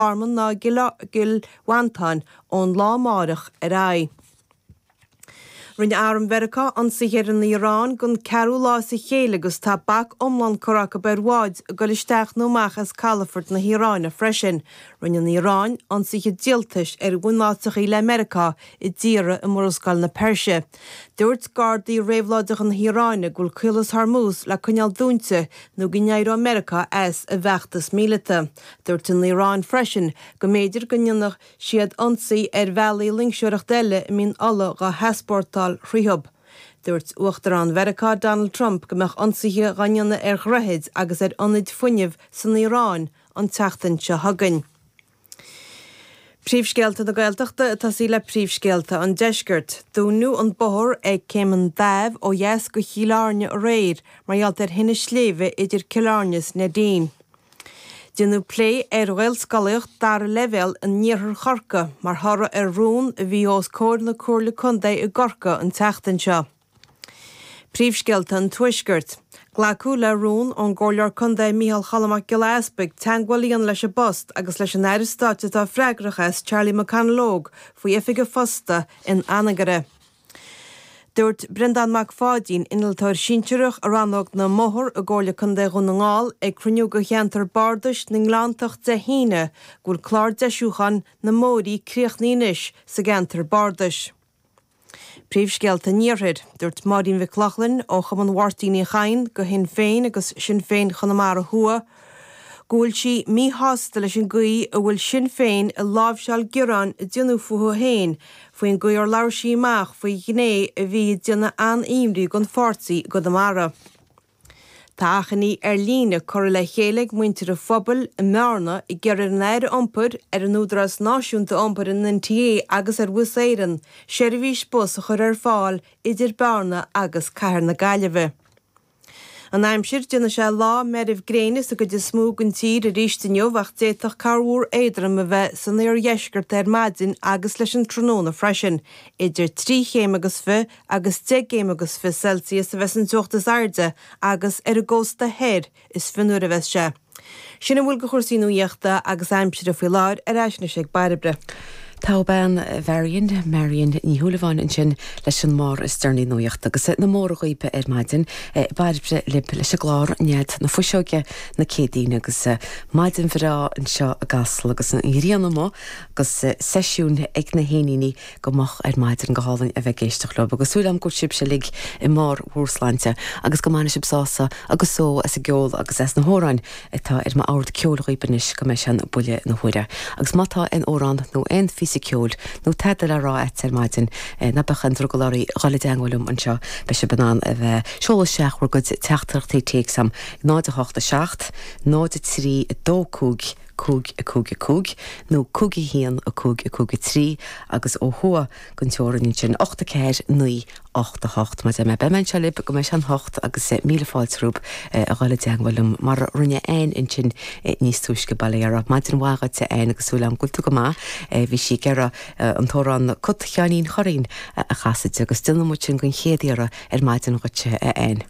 Garman ná i gCill Mhantáin ón lá amáireach ar aghaidh. Rinne arm Mheiriceá ionsaithe ar an Iaráin don ceathrú lá as a chéile agus tá bac iomlán curtha acu ar bháid ag goil isteach nó amach as calafoirt na hIaráine freisin. Rinne an Iaráin ionsaithe díoltais ar bhunáiteachaí le Meiriceá i dtíortha i Murascaill na Peirse. Dúirt Gardaí Réabhlóideacha na hIaráine go bhfuil Caolas Hormuz le coinneáil dúinte nó go n-éireoidh Meiriceá as a bhfeachtas míleata. Dúirt an Iaráin freisin go mb'fhéidir go ndéanfadh siad ionsaí ar bhealaí loingseoireachta eile a mbíonn ola dhá heaspórtáil thríothu. Dúirt Uachtarán Mheiriceá Donald Trump go mbeadh ionsaithe dhá ndéanamh ar dhroichid agus ar ionaid fuinnimh san Iaráin an tseachtain seo chugainn. Príomhscéalta na Gaeltachta ag tosaí le príomhscéalta an deiscirt. Dúnadh an bóthar ag Céim an Daimh ó dheas go Cill Airne aréir mar gheall ar thine sléibhe idir Cill Airne is Neidín. Déanadh plé ar Ghaelscolaíocht dara leibhéal in Iarthar Chorcaí mar thoradh ar rún a bhí os comhair na Comhairle Contae i gCorcaigh an tseachtain seo. Príomhscéalta an Tuaiscirt. Glacadh le rún ón gComhairleoir Contae Micheál Cholm Mac Giolla Easpaig teagmháil a dhéanamh leis an bPost agus leis an Aire Stáit atá freagrach as Charlie McConalogue faoi oifig an phosta in Anagaire. Dúirt Breandán Mac Pháidín, Innealtóir Sinsearach i Rannóg na mBóthar i gComhairle Contae Dhún na nGall, ag cruinniú de Cheantar Bardais na nGleanntach Dé hAoine go bhfuil clár deisiúcháin na mbóithrí críochnaithe anois sa gceantar bardais. Príomhscéalta an Iarthair. Dúirt Máirín Mhic Lochlainn, ó Chumann Mháirtín Uí Chadhain de Shinn Féin agus Sinn Féin Chonamara Thuaidh, go bhfuil sí míshásta leis an gcaoi a bhfuil Sinn Féin ag láimhseáil gearáin a déanadh fúithi féin faoin gcaoi ar labhair sí amach faoi ghné a bhí ag déanamh an-imní don pháirtí i gConamara. Tá achainí ar líne curtha le chéile ag muintir an phobail i mBearna ag iarraidh ar an Aire Iompair, ar an Údarás Náisiúnta Iompair, an NTA agus ar Bhus Éireann seirbhís bus a chur ar fáil idir Bearna agus cathair na Gaillimhe. An aimsir, Déanfaidh sé lá meirbh gréine sa gcuid is mó den tír arís inniu ach d'fhéadfadh corrmhúr éadrom a bheith san iardheisceart ar maidin agus leis an tráthnóna freisin. Idir trí chéim agus fiche agus deich gcéim agus fiche Celsius a bheidh an teocht is airde agus ar an gcósta thoir is fionnuaire a bheidh sé. Sin a bhfuil de chúrsaí nuaíochta agus aimsire faoi láthair, ar ais anois ag Bairbre. Togha Mharion, Marion Ní Shúilleabháin ansin leis an mbarr is deireanaí nuaíochta agus na móra dhaoibh ar maidin. Bairbre libh leis an gclár Nead na Fuiseoige na Céadaoine agus maidin bhreá anseo i gCasla agus an ghrian amuigh agus seisiún ag na héiníní go moch ar maidin. Go hálainn a bheith ag éisteacht leo agus súil agam go bhfuil sibhse uilig i mbarr bhur sláinte agus go mbainfidh sibh sásamh agus só as an gceol agus as na hamhráin atá ar m'ord ceoil dhaoibh anois go mbeidh sé in buille na huaire. Agus má tá aon amhrán nó aon phíosa ceoil nó tada le rá agat ar maidin ná bíodh aon drogall oraibh dul i dteangmháil liom anseo beidh sibh in ann a bheith ag seoladh isteach bhur gcuid teachtaireachtaí téacs agam 0 8 7 0 3 2 5 5, 5, 5, nó 5, 1, 5, 5, 3, agus ó thuaidh den teorainn ansin, 8, 4, 9, 8, 8, mar a dúirt mé, beidh mé anseo libh, go mbeidh sé an hocht, agus míle fáilte romhaibh a ghabháil i dteangmháil liom, mar a rinne Anne ansin níos túisce, bail ó Dhia uirthi, maidin mhaith dhuit a Anne, agus súil agam go bhfuil tú go maith, bhí sí ag iarraidh an t-amhrán Cat Sheáinín Churraoin a chasadh di, agus déanfaidh muid sin den chéad iarraidh ar maidin dhuit a Anne.